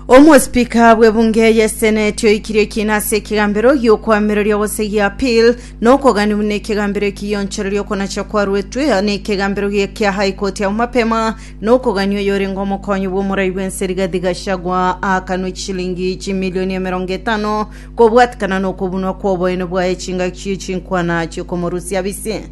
Omospika bw'ebunge y'eseneti oikirie ekina ase ekegambero gi'okwamereria gose gia appeal na okogania buna ekegambero eki gionchoreria okonacha kwaruetwe na ekegambero gia kia high court ao mapema na okogania oyorenge omokonyi bw'omorai bw'ense Rigathi Gachagua aakanwe chilingi chimilioni emerongo etano kobwatikana na okobunwa kw'oboene bwaye chingaki chi'echinkwana chi'okomorusia bise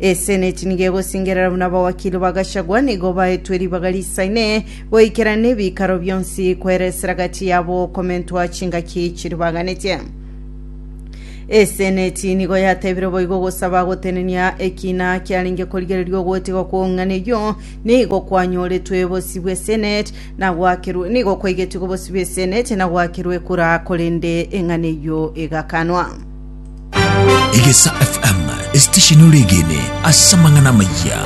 Eseneti nigo egosingerera buna abawakili ba Gachagua nigo baetwe ribaga risaine goikera nebikaro bionsi kweresera gati yabo komentwa chingaki chiribaganetie. Eseneti nigo yatebire boigo gosaba gotenenia ekina kiarenge korigereria ogotigwa kw'ong'ana eyio nigo kwanyoretwe bosi bw'eseneti na gwakerwe nigo kwaigetigwe bosi bw'eseneti na gwakerwe ekura korende eng'ana eyio egakanwa. Egesa FM, esitesheni ore egene ase amang'ana amayia.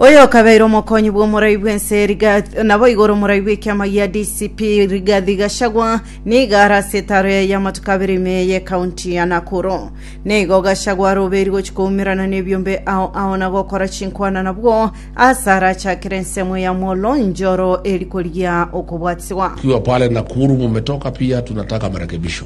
oyo okabeire omokonyi bw'omorai bw'ense Rigathi- nabo igoro omorai bw'ekiama gia dcp rigathi gachagwa niga ara ase etaro yaye y'amatuko abere ime eye ekaunti ya nakuru nigo gachagwa aroberi gochi koumerana n'ebiombe ao ao na gokora chinkwana nabwo ase arachakere ensemo ya molo njoro eri korigia okobwatiswa Ukiwa pale Nakuru mumetoka pia tunataka marekebisho.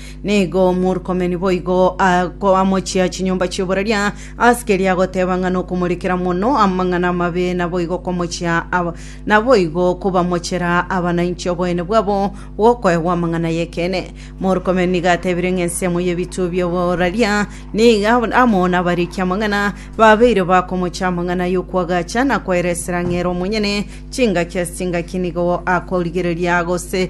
Nigo Murkomeni boigo akoamochia chinyomba chi'oboraria, ase keria agoteba ng'a nokomorekera mono amang'ana amabe, naboigo okomochia aba- naboigo kobamochera abanainche oboyene bwabo bw'okoegwa amang'ana y'ekeene. Murkomeni nigo atebire ng'a ensemo y'ebituo bi'oboraria niga amo nabariki amang'ana, babeire bakomochia amang'ana y'okwagacha na koeresera ng'a ere omonyene chingaki ase chingaki nigo akorigereria gose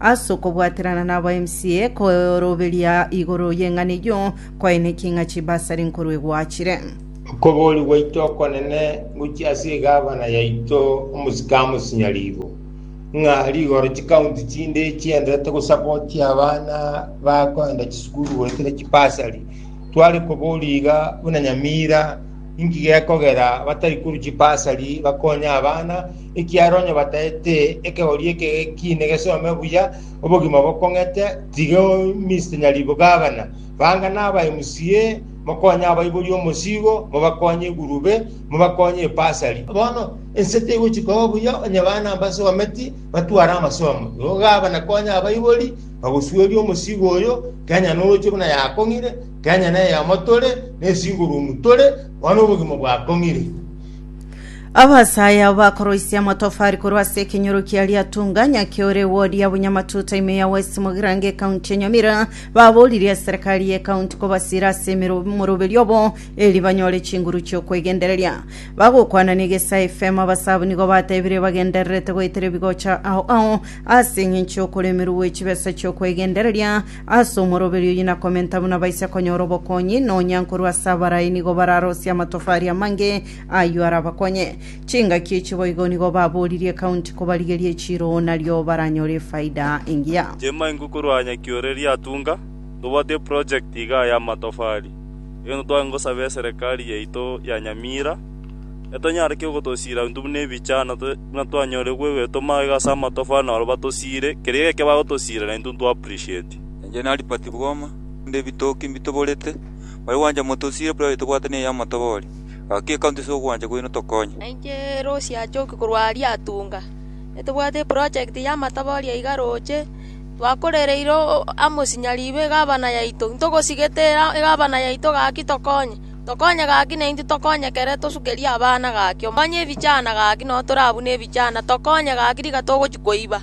As'okobwaterana nab'emcea koroberia igoro y'eng'ana eyio, kwaenekire ng'a chibasari nkoru egwachire. Okobori gwaito okonene gochia ase egavana yaito omosike amosinya riibo ng'a rigoro chikaunti chinde chienderete gosapotia abana bakoenda chisukuru goetera chibasari. Tware kobori iga buna Nyamira inki gekogera batari korwa chibasari bakonye abana. Ekiagera onye bataete ekegori eke gekiine gesome buya, obogima bokong'ete, tiga Mister Nyaribo Gavana, banga na aba MCA, mokonye abaiborie omosigo, mobakonye egurube, mobakonye ebasari. Bono ense tegochi koba buya onye bana mbasometi batware amasomo. Igo Gavana konye abaibori bagosueria omosigo oyo, Kenya noroche buna yakong'ire, Kenya neyemo tore, ne single room tore, bono obogima bwakong'ire. Abasaae abo bakoroisia amatofari korwa ase ekenyoro kia Riatunga, Nyaki ore wodi ya Bunyamatuta ime ya West Mogirango ekaunti ya Nyamira, baboririe eserikari y'ekaunti kobasira ase emero- omoroberi obo eri banyore chinguru chi'okwegendereria. Bagokwana n'Egesae FM abasaae abwo nigo batebirie bagendererete goetera ebigocha ao ao ase eng'encho y'okoremerwa gwe chibesa chi'okwegendereria Ase omoroberio oyio nakomenta buna baise konyora obokonyi, nonya nkorwa ase abarai nigo bararosie amatofari amange ayio arabakonye. Chingaki echi boigo nigo baboririe ekaunti kobarigeria echiiro nario baranyore efaida engiya. Chema ingo korwa Nyaki ore Riatunga, tobwate eproject igaa y'amatofari, erio nitwagenda gosaba eserekari yaito ya Nyamira, Etanyarekire ogotosiira intwe buna ebicha, na buna twanyore gwegwetwa magega ase amatofali na barabwo batosiire, keria geke bagotosiira na intwe ntwa appreciate. Inche na Albert Bwoma, onde ebitoki mbitoborete, mbare gwancha motosiire private tobwate ne y'amatoboli. Gaki ecounty ase ogwancha kwaino tokonye. Na inche Rosi achoki korwa aria atunga, etobwate eproject y'amatoboli aiga roche, twakorereire o- amosinyari iga egabana yaito, ntogosigete era egabana yaito gaki tokonye. Tokonye gaki naintwe tokonyekere tosukerie abana gaki, omonye ebichana gaki nao torabune ebichana, tokonye gaki riga togochia koiba.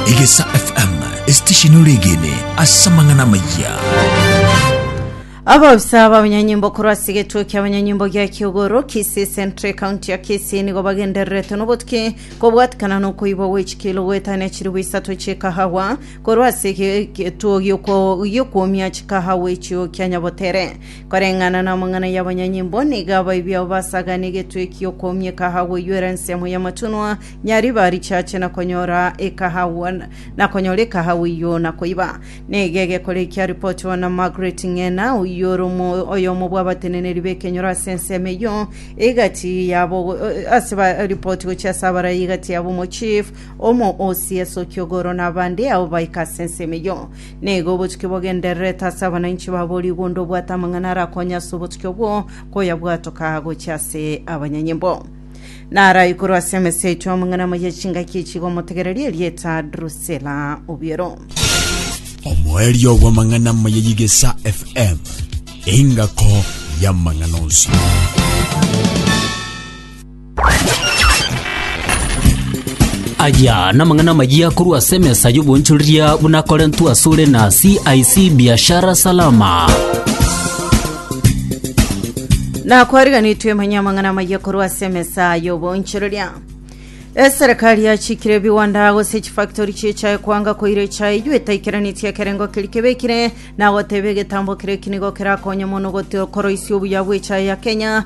Egesa FM, estesheni ore egene ase amang'ana amayia. Abaofisa b'abanyanyimbo korwa ase egetuo ki'abanyanyimbo gia Kiogoro, Kisii Central, ekaunti ya Kisii nigo bagendererete nobotuki kobwatikana nokoibwa gwe chikilo goetania chilifu isato chi'ekahawa Korwa ase egetuo gi'okwomia chikaha gw'echio kia Nyabotere, koreng'ana namang'ana y'abanyanyimbo, nigo abaibi abo basagana egetuo eki gi'okwomia ekaha goiywera ensemo y'amatunwa, nyariba richache na konyora ekaha na konyora ekaha gw'iywo na koiba. Nigo egekora eki aripotiwa na Margaret Ng'ina, oyio ore oyomo bw'abateneneri b'ekenyoro ase ensemo eyio, egati yabo ase baripoti gochia ase abarai egati yabo omochief Omo osie esokia ogoro na abande, ao baika ase ensemo eyio. Nigo obotuki bogendererete ase abananchi babo rigo onde obwate amang'ana arakonye ase obotuki obwo koyabwatoka gochia ase abanyanyimbo. Narae korwa ase emesa yaito amang'ana amaya chingaki echi igo motegererie erieta Drusela obiero. omoerio bw'amang'ana amaya y'igesa fm engako y'amang'ana onsi Aya namang'ana amayia korwa ase emesa y'obonchoreria buna akorentwe asore na CIC Biashara Salama. nakwariganitwe emanye amang'ana amaya korwa ase emesa y'obonchereria eserikari yachikire ebiwanda gose chifactori chi'echae kwanga koira echae eywo etaikeranetie ekerengo keri kebekire na goteba egetambo kere ekinigo kerakonye mono gote- koroisia obuya bw'echae ya kenya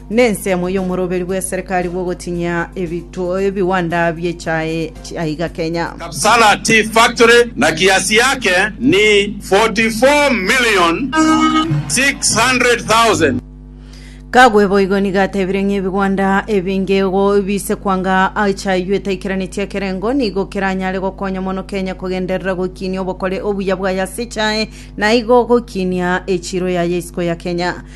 Nensemo y'omoroberi bw'eserekari bw'ogotinyia ebiwanda bie chae aiga Kenya. Kapsala Tea Factory na kiasi yake ni 44,600,000. Kagwe boigo nigo atebire ng'a ebigwanda ebinge igo biise kwanga echae eyio etaikeranetie ekerengo nigo keranyare gokonya mono Kenya kogenderera goikinia obokore obuya bwaye ase echae na igo goikinia echiro yaye isiko ya Kenya.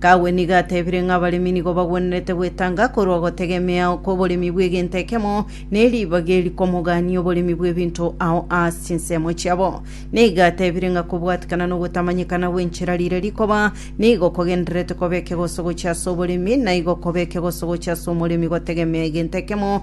Kagwe nigo atebire ng'a abaremi nigo bagwenerete gwetanga korwa ogotegemea kw'oboremi bw'egento ekemo ne ribaga eri kw'omogania oboremi bw'ebinto ao aase chinsemo chiabo. Nigo atebire ng'a kobwatikana na ogotamanyekana gw'enchera riria rikoba nigo kogendererete koba ekegoso gochia ase oboremi, na igo koba ekegoso gochia ase omoremi gotegemea egento ekemo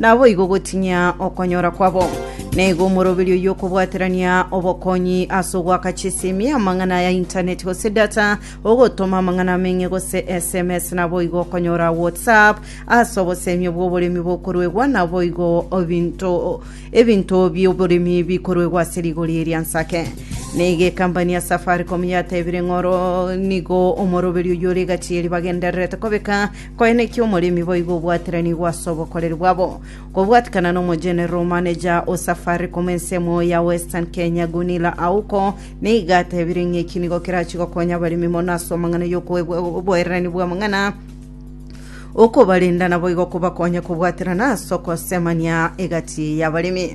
Naboigo gotinyia okonyora kwabo. Naigo omoroberio y'okobwaterania obokonyi ase ogoaka chisimi, amang'ana ya intaneti gose data, ogotoma amang'ana ameng'e gose SMS, naboigo okonyora WhatsApp ase obosemio bw'oboremi bokoruegwa, naboigo ebinto ebinto bi'oboremi bikoruegwa ase rigori eria nsake. Naigo ekampani ya Safaricom yatebire ng'oro nigo omoroberio oyore egati eri bagendererete kobeka Koene ki omoremi boigo obwaterani gw'ase obokoreri bwabo, kobwatikana n'omogeneral manager o Safaricom ensemo ya Western Kenya Gunilla Auko nigo atebire ng'a eki nigo kerachie gokonya abaremi mono ase amang'ana y'okoegwa oboererani bw'amang'ana okobarenda naboigo kobakonya kobwaterana ase okosemania egati y'abaremi.